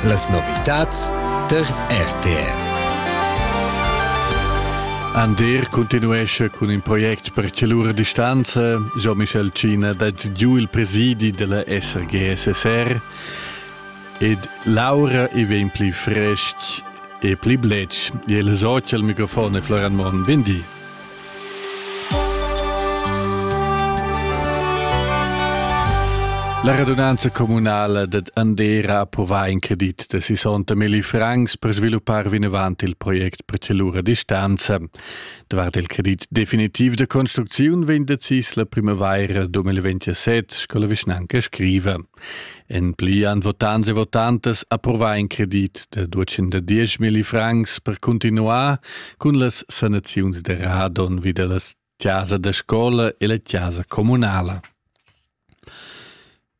Las novitads tar RTR. Ander continuesce cun in project per celura distanza. Jean-Michel Cina dat giu il presidi della SRGSSR ed Laura e vegn pli fresc e pli bletsch. E il socia al microfon è Floran Mon. Vendi. La radunanza communala dad Andera approvà in credit da 60 milli francs per sviluppar vinavant il project per Celura distanza. Davart il credit definitiv da construcziun vegn decis la primavaira 2027, sco la vischnanca scriva. En pli han votants e votantas approvà in credit da 210 milli francs per cuntinuar cun las sanaziuns da radon vi da la chasa da scola e la chasa communala.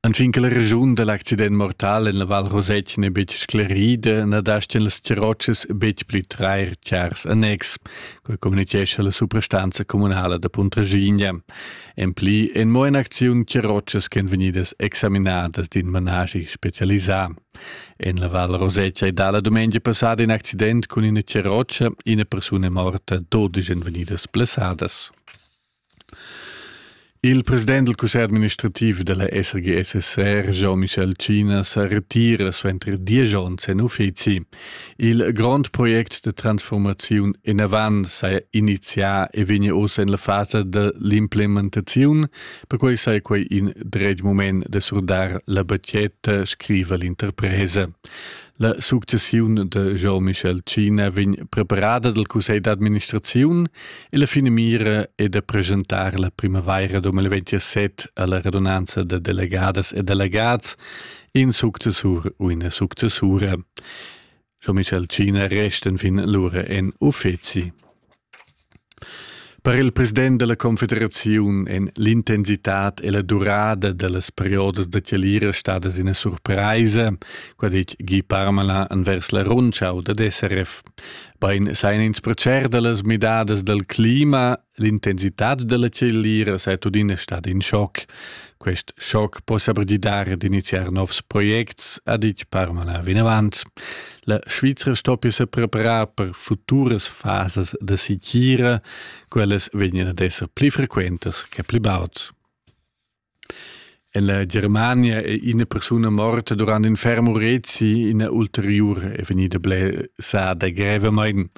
Anfin che la regiun da l'accident mortal en la Val Rosetg n'è betg sclerida, na dastan las Tirotschas betg pli trair chars annex, quai communitgescha la suprastanza communala da Puntraschigna. En pli en mo in'acziun che rotschas ch'en vegnidas examinadas d'in manaschi specialisà. En la Val Rosetta è dalla dumengia passada in accident cun ina roccia ina persuna morta, dodisch èn vegnidas blessadas. Il president del cussegl administrativ della SRG-SSR, Jean-Michel Cinas, retira suenter diesch onns en uffizi Il grond project de transformaziun enavant s'ha inizià e vegna ossa in la fasa dell'implementaziun, perquai sai quei in dret moment de surdar la batgetta, scriva l'interpresa. La successiun de Jean-Michel Cina vegn preparada dal Cussegl d'administraziun e la fine mira è da presentar la primavaira 2027 alla radunanza de delegadas e delegats in successur u ina successura. Scho Michel Cina resten fin lura en uffeci. Per il president della confederaziun en l'intensitad e la durada dellas periodas da tielira stadas ina surpraisa, qua dic Guy Parmelin envers la rundschau dad SRF. Bein seien ins procer dellas midadas del clima L'intensitad della cellira sei tudina stada in schoc. Quest schoc possa pregidare d'iniziar novs projects, ha ditg Parmala vinavant. La Svizra stoppia se preparar per futuras fasas da sicira, quellas vegnan ad esser pli frequentas che pli baud. Ella Germania è ina persuna morta durant in ferm urezi. Ina ulteriura è vegnida blessada grevamain.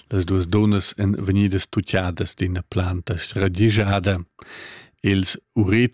Las duas dunnas èn vegnidas tutgadas d'ina planta sradigiada. Ils urets